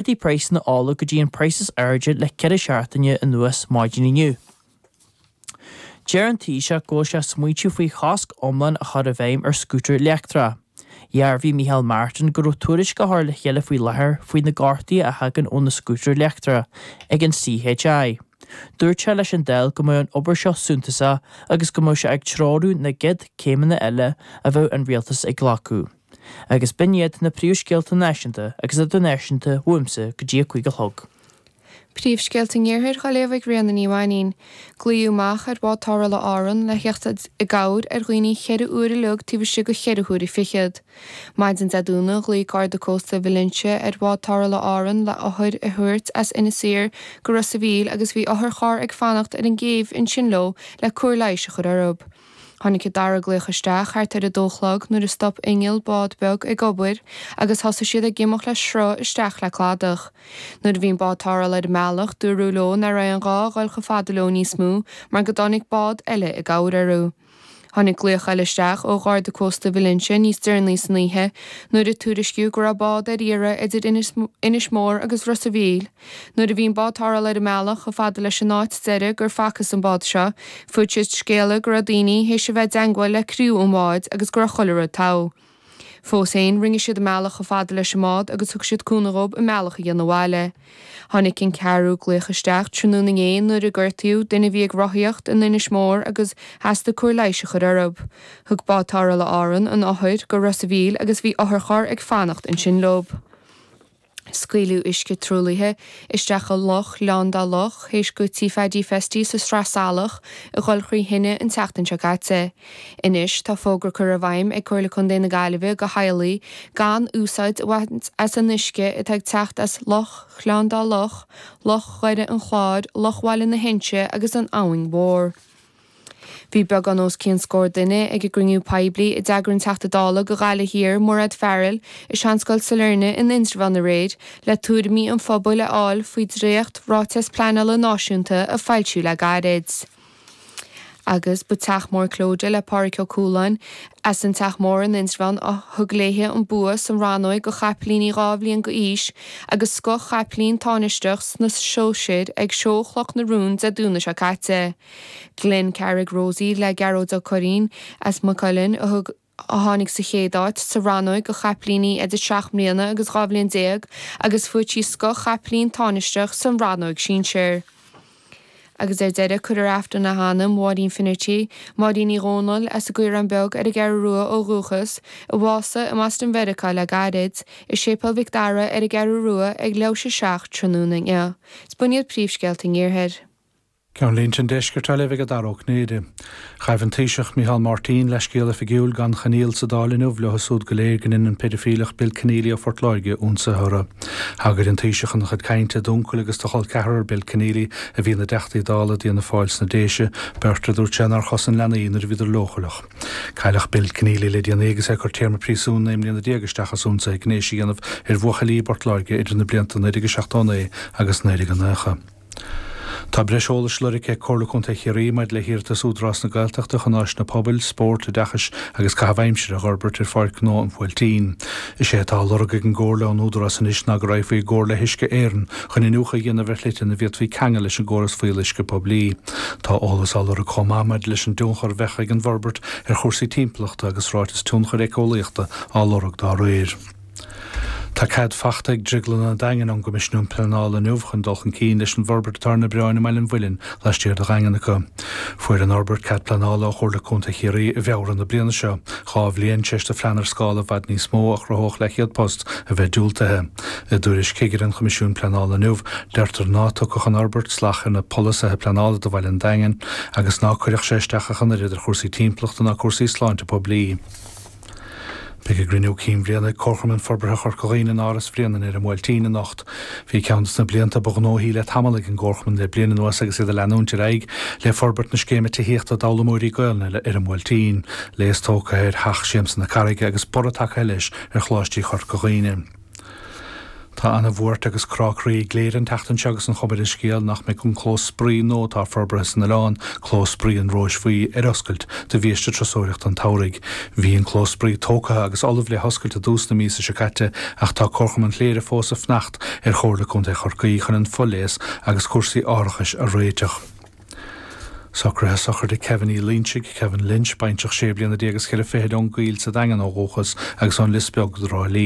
D'éirigh praghsanna ola go dtí an praghas is airde le ceithre seachtaine anuas, maidin inniu. Deir an Taoiseach go bhfuil sé ag smaointiú faoi chosc iomlán a chur i bhfeidhm ar scútair leictreacha. Dhearbhaigh Micheál Martin go raibh tuairisc á chur le chéile faoi láthair faoi na gortuithe a thagann ó na scútair leictreacha ag an CHI. Dúirt sé leis an Dáil go mbeadh an obair seo suntasach agus go mbeadh sé ag treorú na gcéad céimeanna eile a bheadh an Rialtas ag glacadh. agus b'in iad na príomhscéalta náisiúnta agus idirnáisiúnta uaimse go dtí a cúig a chlog. Príomhscéalta an Iarthair dá léamh ag Ríona Ní Mhainín. Glaodh amach ar bhád tarrthála Árann le theacht i gcabhair ar dhaoine ceithre huaire uilig taobh istigh de cheithre huaire fichead. Maidin Dé Domhnaigh ghlaoigh Garda Cósta Valentia ar bhád tarrthála Árann le hothar a thabhairt as Inis Oírr go Ros a' Mhíl agus bhí otharcharr ag fanacht ar an gcéibh ansin leo le cóir leighis a chur orthub. Tháinig an dara glaoch isteach thart ar a dó a chlog nuair a stop inneall bád beag ag obair agus thosaigh siad ag imeacht le sruth isteach le cladach. Nuair a bhí an bád tarrthála ar an mbealach dúradh leo ná raibh aon ghá a dhul chomh fada leo níos mó mar go dtáinig bád eile i gcabhair orthu. Tháinig glaoch eile isteach ó Gharda Cósta Valentia níos deireanaí san oíche nuair a tuairiscíodh go raibh bád ar iarraidh idir Inis Mór agus Ros a' Mhíl, Nuair a bhí an bád tarrthála ar an mbealach chomh fada leis an áit deiridh gur facthas an bád seo, fuair siad scéala go raibh daoine théis a bheith i dteangmháil le criú an bháid agus go raibh chuile rud togha. Fós féin, rinne siad a mbealach chomh fada leis an mbád agus thug siad cúnamh dhóib a mbealach a dhéanamh abhaile. Tháinig an ceathrú glaoch isteach tráthnóna inné nuair a gortaíodh duine a bhí ag rothaíocht in Inis Mór agus theastaigh cóir leighis a chur orthub. Thug Bád Tarrthála Árann an othar go Ros a' Mhíl agus bhí otharcharr ag fanacht ansin leob. Scaoileadh uisce truaillithe isteach i Loch Ghleann Dá Loch, théis go Tí Phaidí Festy sa Sraith Salach a dhul thrí thine an tseachtain seo caite. Anois tá fógra curtha i bhfeidhm ag Comhairle Contae na Gaillimhe go theaghlaigh gan úsáid a bhaint as an uisce atá ag teacht as Loch Ghleann Dá Loch, Loch Dhoire an Chláir, Loch Bhaile na hInse agus an Abhainn Mhór. Bhí beagán os cionn scór duine ag an gcruinniú poiblí a d'eagraigh an Teachta Dála do Ghaillimh Thiar, Mairéad Farrell, i Seanscoil Sailearna in Indreabhán aréir le tuairimí an phobail a fháil faoi dhréacht Ráiteas Pleanála Náisiúnta a foilsíodh le gairid. Agus ba Teach Mór Clodagh le Pádraig Ó Cualáin as an Teach Mór in Indreabhán a thug léi an bua sa rannóig do chaipilíní dhá bhliain d'aois agus scoth chaipilín tánaisteach sna sóisir ag Seó Chloch na Rón Dé Domhnaigh seo caite. Glen Carrig Rosie le Gearóid Ó Curraoin as Maigh Cuilinn a thug a tháinig sa chéad áit sa rannóg do chaipilíní idir seacht mbliana agus dhá bhliain déag agus fuair trí scoth caipilín táinisteach sa rannóg sinsear. Agus ar deireadh cuirfear Aifreann le hanam Mháirín Finnerty, Máirín Uí Dhomhnaill, as an gCaorán Beag ar an gCeathrú Rua ó dhúchas, a bhásaigh i mBoston Mheiriceá le gairid, i Séipéal Mhic Dara ar an gCeathrú Rua ag leathuair tar éis a seacht tráthnóna inniu. Is b'in iad príomhscéalta an Iarthair. Ceannlínte an Deiscirt á léamh ag Dara Ó Cinnéide. Ghaibh an Taoiseach, Micheál Máirtín, leithscéal oifigiúil gan choinníoll sa Dáil inniu leo súd go léir gur dhein an peidifíleach Bill Kenneally ó Phort Láirge ionsaithe orthu. Thagair an Taoiseach ina chuid cainte d'uncail agus do chol ceathrar Bill Kenneally a bhí ina dTeachtaí Dála d'Fhianna Fáil sna Déise, beirt a dúirt sé nár chosain leanaí nuair a bhíodar leochaileach. Cailleadh Bill Kenneally le déanaí agus é ag cur téarma príosúin naoi mbliana déag isteach as ionsaithe gnéis a dhéanamh ar bhuachaillí i bPort Láirge idir na blianta 1979 agus 1990. Tá breis eolais á lorg ag Comhairle Contae Chiarraí maidir le hiarratas Údarás na Gaeltachta chun áiseanna pobail, spórt, oideachais agus caitheamh aimsire a fhorbairt ar Pháirc Ghnó an Bhuailtín. Is é atá á lorg ag an gComhairle ón Údarás anois ná go raghfaí i gcomhairle le hUisce Éireann chun iniúchadh a dhéanamh ar shlite ina bhféadfaí ceangal leis an gcóras fuíolluisce poiblí. Tá eolas á lorg chomh maith maidir leis an dtionchar a bheadh ag an bhforbairt ar chúrsaí timpeallachta agus ráiteas tionchair éiceolaíochta á lorg dá réir. Tá cead fachta ag Drioglann an Daingin ón gCoimisiún Pleanála inniu chun dul chun cinn leis an bhforbairt atá ar na bioráin i mBaile an Mhuilinn laistiar de Dhaingean acu. Fuair an fhorbairt cead pleanála ó Chomhairle Contae Chiarraí i bhFeabhra na bliana seo, dhá bhliain tar éis do phlean ar scála i bhfad níos mó a chruthódh leathchéad post a bheith diúltaithe. I dtuairisc chigire an Choimisiúin Pleanála inniu, deirtear ná tógfadh an fhorbairt slacht ar na polasaithe pleanála do Bhaile an Daingin agus ná cuirfeadh sé isteach ach an oiread ar chúrsaí timpeallachta ná cúrsaí sláinte poiblí. Beidh a gCruinniú Cinn Bhliana ag Comharchumann Forbartha Chorca Dhuibhne in Áras Bhréanainn ar an mBuailtín anocht. Bhí ceann de na blianta ba ghnóthaí le tamall ag an gComharchumann le bliain anuas agus iad ag leanúint ar aghaidh le forbairt na scéime tithíochta d'fhoghlaimeoirí Gaolainne ar an mBuailtín. Léas tógtha ar Theach Siamsa na Carraige agus borradh tagtha leis ar Choláistí Chorca Dhuibhne. Tá ana bhuairt agus crá croí i gCléire an tseachtain seo agus an chuma ar an scéal nach mbeidh an clós spraoi nua atá forbartha san oileán, clós spraoi an Róis Bhuí, ar oscailt do bhiaiste turasóireachta an tsamhraidh. Bhí an clós spraoi tógtha agus ullamh le hoscailt i dtús na míosa seo caite ach tá Comharchumann Chléire fós ag fanacht ar Chomhairle Contae Chorcaí chun an fo-léas agus cúrsaí árachais a réiteach. Socruithe sochraide Kevin Uí Loinsigh, Kevin Lynch, baintreach sé bliana déag is ceithre fichid ón gCoill sa Daingean ó dhúchas agus ón Lios Beag i dTrá Lí.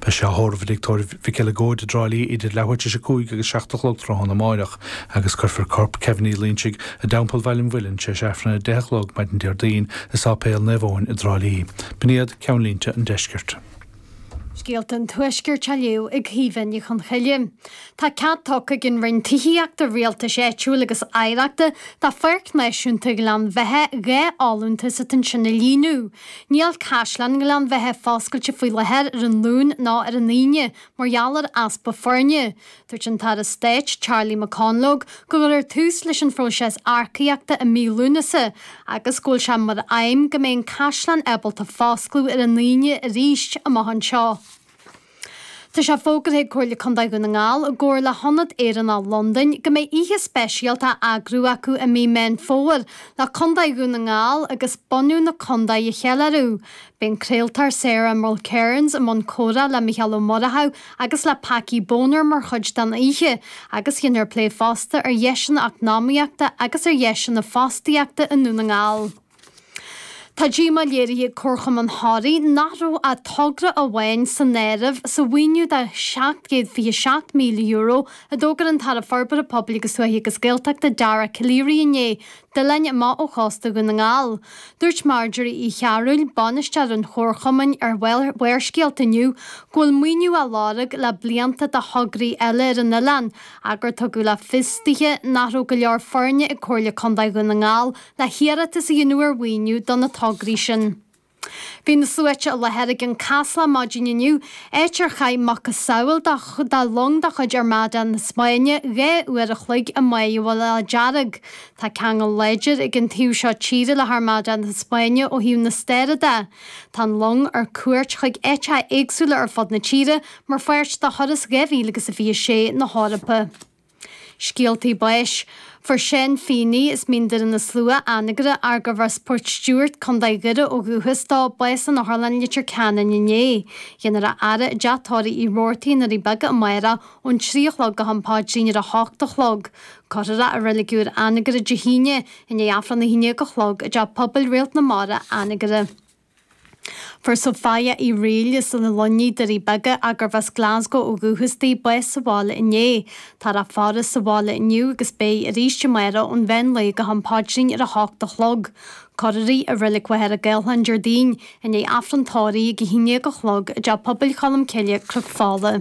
Beidh sé á thórramh i dtigh tórraimh Mhic Giolla Chuda i dTrá Lí idir leathuair tar éis a cúig agus seacht a chlog tráthnóna amáireach agus cuirfear corp Kevin Uí Loinsigh i dTeampall Bhaile an Mhuilinn tar éis Aifrinn a deich a chlog maidin Déardaoin i Sáipéal Naomh Eoin i dTrá Lí. B'in iad ceannlínte an Deiscirt. Scéalta an Tuaiscirt á léamh ag Caoimhe Ní Chonchoille. Tá cead tugtha ag an Roinn Tithíochta, Rialtais Áitiúil agus Oidhreachta do Pháirc Náisiúnta Ghleann Bheithe dhá fholúntas atá ansin a líonadh. Níl Caisleán Ghleann Bheithe foscailte faoi láthair ar an Luan ná ar an Aoine mar gheall ar easpa foirne. Dúirt an tAire Stáit Charlie McConalogue go gcuirfear tús leis an phróiseas earcaíochta i mí Lúnasa agus go bhfuil sé mar aidhm go mbeidh an Caisleán ábalta foscladh ar an Aoine arís amach anseo. Tá sé fógartha ag Comhairle Contae Dhún na nGall i gcomhar le hIonad Éireannach Londain go mbeidh oíche speisialta á eagrú acu i mí Meán Fómhair le Contae Dhún na nGall agus bunadh na Contae a cheiliúradh. Beidh an craoltóir Sarah Mulkerrins i mbun comhrá le Mícheál Ó Murchaidh agus le Packie Bonner mar chuid den oíche agus dhéanfar plé fosta ar dheiseanna eacnamaíochta agus ar dheiseanna fostaíochta i nDún na nGall. Tá díomá léirithe ag Comharchumann Thoraí nach raibh ach togra amháin san áireamh sa mhaoiniú de €727,000 a d'fhógair an tAire Forbartha Pobail agus Tuaithe agus Gaeltachta Dara Calleary inné d'oileáin amach ó chósta Dhún na nGall. Dúirt Marjorie Uí Chearúil, bainisteoir an chomharchumainn ar Bharrscéalta inniu go bhfuil maoiniú á lorg le blianta do thograí eile ar an oileán ach gur tugadh le fios dithe nach raibh go leor foirne ag Comhairle Contae Dhún na nGall le hiarratas a dhéanamh ar mhaoiniú do na tograí sin. Bhí na sluaite i láthair i gCionn Caslach maidin inniu, áit ar chaith macasamhail de long de chuid Armada na Spáinne dhá uair a chloig i mBá Mhullach Dearg. Tá ceangal láidir ag an taobh seo tíre le hArmada na Spáinne ó thaobh na staire de. Tá an long ar cuairt chuig áiteacha éagsúla ar fud na tíre mar pháirt de thuras 2026 na hEorpa. Scéaltaí Báis. Fuair Seán Feeney, as Mín Doire na Slua, Anagaire, gurbh as Port Stewart, Co. Dhoire ó dhúchas dó, bás san Otharlann i Leitir Ceanainn inné. Dhéanfar a fhaire i dteach tórraimh Uí Roarty i nDoirí Beaga amárach ón trí a chlog go ham paidrín ar a hocht a chlog. Cuirfear é i Reilig Úr Anagaire Dé hAoine i ndiaidh Aifreann a haon déag a chlog i dTeach Pobail Réalt na Mara, Anagaire. Fuair Sophia Uí Fhrighil as an Luinnigh, Doirí Beaga gurbh as Glasgow ó dhúchas di, bás sa bhaile inné. Táthar á faire sa bhaile inniu agus beidh arís amárach ón mheán lae go ham paidrín ar a hocht a chlog. Cuirfear í i Reilig Mhachaire Gathlán Déardaoin, i ndiaidh Aifreann tórraimh ag a haon déag a chlog i dTeach Pobail Cholm Cille, Cnoc Fola.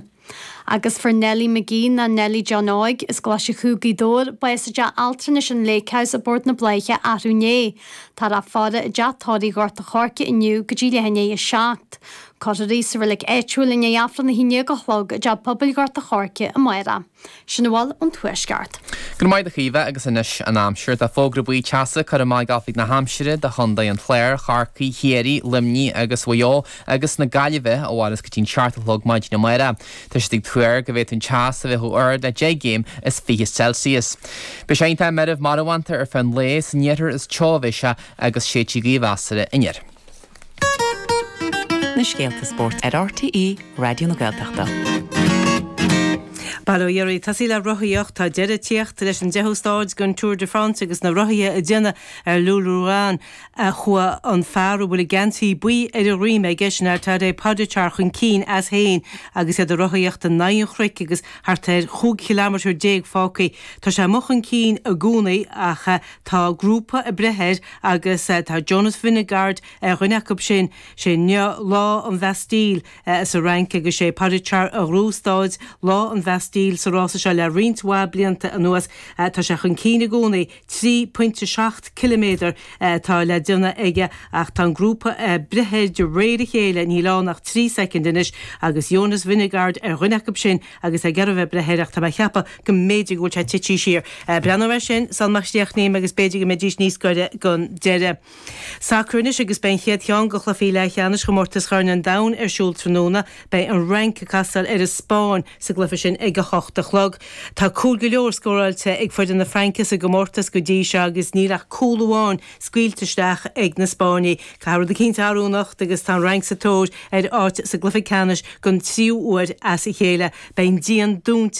Agus fuair Nellie Magee nó Nellie John Óig as Glaise Chú, Gaoth Dobhair, bás i dteach altranais an Lake House i bPort na Bláiche athrú inné. Táthar á faire i dteach tórraimh Ghort a' Choirce inniu go dtí leath i ndiaidh a seacht. Cuirfear í sa reilig áitiúil i ndiaidh Aifreann a haon déag a chlog i dTeach Pobail Ghort a' Choirce amárach. Sin a bhfuil ón Tuaisceart. Go raibh maith agat a Chaoimhe agus anois an aimsir. Tá fógra buí teasa curtha amach ag Oifig na hAimsire do Chontae an Chláir, Chorcaí, Chiarraí, Luimnigh agus Mhaigh Eo agus na Gaillimhe a mhairfeas go dtí'n seacht a chlog maidin amárach. Tá siad ag tuar go bhféadfadh an teas a bheith chomh hard le deich gcéim is fiche Celsius. Beidh sé iontach meirbh marbhánta ar feadh an lae san iarthar is teo a bheas sé agus séidfidh gaoth mheasartha anoir. Na scéalta spóirt ar RTÉ Raidió na Gaeltachta. Bail ó Dhia oraibh, ag tosaí le rothaíocht, tá deireadh ag tíocht leis an deichiú stáid den Tour de France agus na rothaithe ag déanamh ar Le Lioran chuaigh an fear a bhfuil an geansaí buí ar a dhroim aige, sin é Tadej Pogacar chun cinn as féin agus iad ag rothaíocht in aghaidh an chnoic agus thart ar chúig chiliméadar déag fágtha. Tá sé amuigh chun cinn i gcónaí ach Tá grúpa ag breith air agus tá Jonas Vingegaard ar dhuine acu sin. Is é inniu Lá an Bhastille sa Fhrainc agus is é Pogacar a ghnóthaigh stáid Lá an Bhastille sa rása seo le roinnt mhaith blianta anuas. Tá sé chun cinn i gcónaí. Trí phointe seacht ciliméadar atá le déanamh aige ach tá an grúpa ag breith air de réir a chéile. Níl ann ach trí shoicind anois agus Jonas Vingegaard ar dhuine acu sin. agus é ag iarraidh a bheith ag breith air, ach tá mé ag ceapadh go mb'fhéidir go bhfuil sé tití siar. Breathnóidh mé air sin sul má chríochnaím agus b'fhéidir go mbeidís níos goire gon deireadh. Sacar anois agus beidh an chéad cheann go chluifí leathcheannais Chomórtas Chorn an Domhain ar siúl tráthnóna. Beidh an Fhrainc ag castáil ar an Spáinn sa gcluife sin ag a hocht a chlog. Tá cúil go leor scóráilte ag foireann na Fraince sa gcomórtas go dtí seo agus níl ach cúl amháin scaoilte isteach ag na Spáinnigh. Caithfidh rud eicínt tarlú anocht agus tá an Fhrainc sa tóir ar áit sa gcluiche ceannais don tríú uair as a chéile. Beidh an díon dúnta